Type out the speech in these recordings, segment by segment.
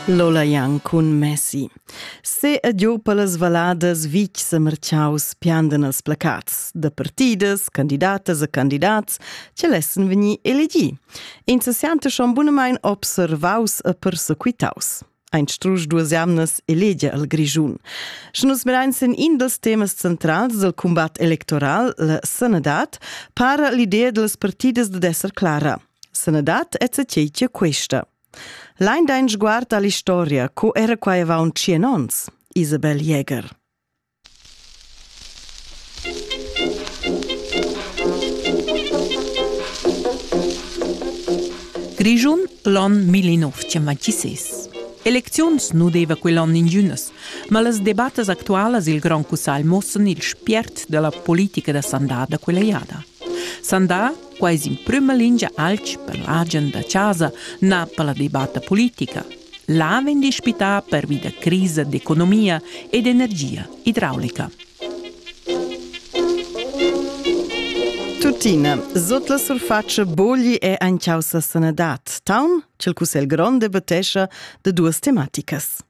Lola Jan cun Messi. Se e giu per las valadas vic sa marciaus piandan els placats da partidas, candidatas e candidats che lessen vegnir elegi. In se siante schon bunamain observaus e persequitaus. Ein strusch duas jamnas elegia al Grischun. Sche nus mirain sin in dels temas centrals del combat electoral, la sanadad, para l'idea delles partidas de esser clara – Sanadad è tgei che questa. Lein dein sguard all'historia, co era quai avon 100 ons? Isabel Jäger. Grischun l'on 1926. Elecziuns nu deva quell'on ingünas, ma las debattas actualas il Grand Cussagl muossan il spiert della politica da sandà da quella jada. Sandà Quai es in prüma lingia alch per l'agen da chasa, na per la debatta politica. Là vegn dispità pervi da crisa d'economia e d'energia idraulica. Tuttina, sot la surface bogli è ein causa sanadad. Taun, cel cussel grond debattescha de duas tematicas.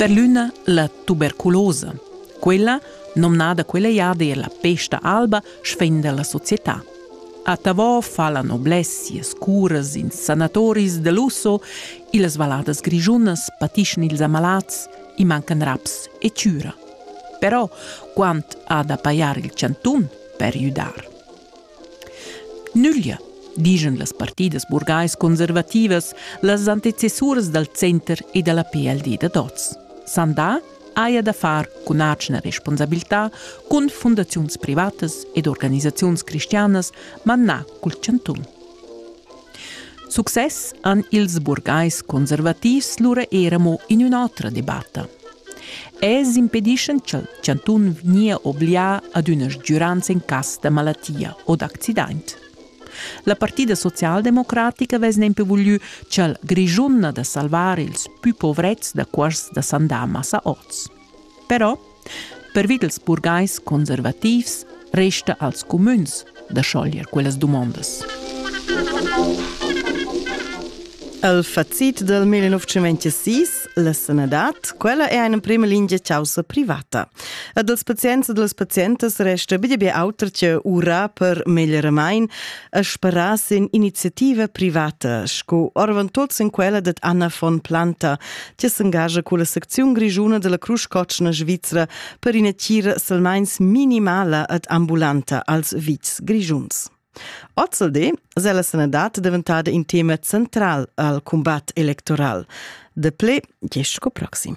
Per l'üna la tuberculosa, quella, nomnada quella jada er la pesta alba, sfenda la società. A Tavò fa la noblessias curas in sanatoris de lusso, illas valladas grigiunas patischan ils amalats, i mancan raps e cura. Però, quant ha da pajar il chanton per judar? Nüglia, dischan las partidas burgais-conservativas las antecessuras dal center e da la PLD dad oz. Sandà haja da far cun atgna responsabilità cun fundaziuns privatas ed organisaziuns cristianas, manà cul chantun. Success han ils burgais conservativs lura era mo in ün'otra debatta. Els impedischan cha'l chantun vgnia oblià ad üna sgüranza in cas da malatia o d'accidaint. La partida socialdemocratica vess nempe vuglü cha'l Grischun na da salvar ils pü povrets da cuors da sandamas a oz. Però Pervi dals burgais conservativs resta als cumüns da schoglier quellas dumondas. El facit del 1926, la sanadad, quella è eine prima linea causa privata. E dels pazients e des pazientes resta bine be auter che ura per meglieramain e speras in iniziativa privata, sco orvan tots in quella det Anna von Planta, ti s'engagia con la secziun grigiuna della Crusch Cotschna Svizzera per ina tira selmains minimala ed ambulanta als vits grigiuns. Ozzelde se la sanadad diventada in tema central al combat electoral. De ple, gest sco proxim.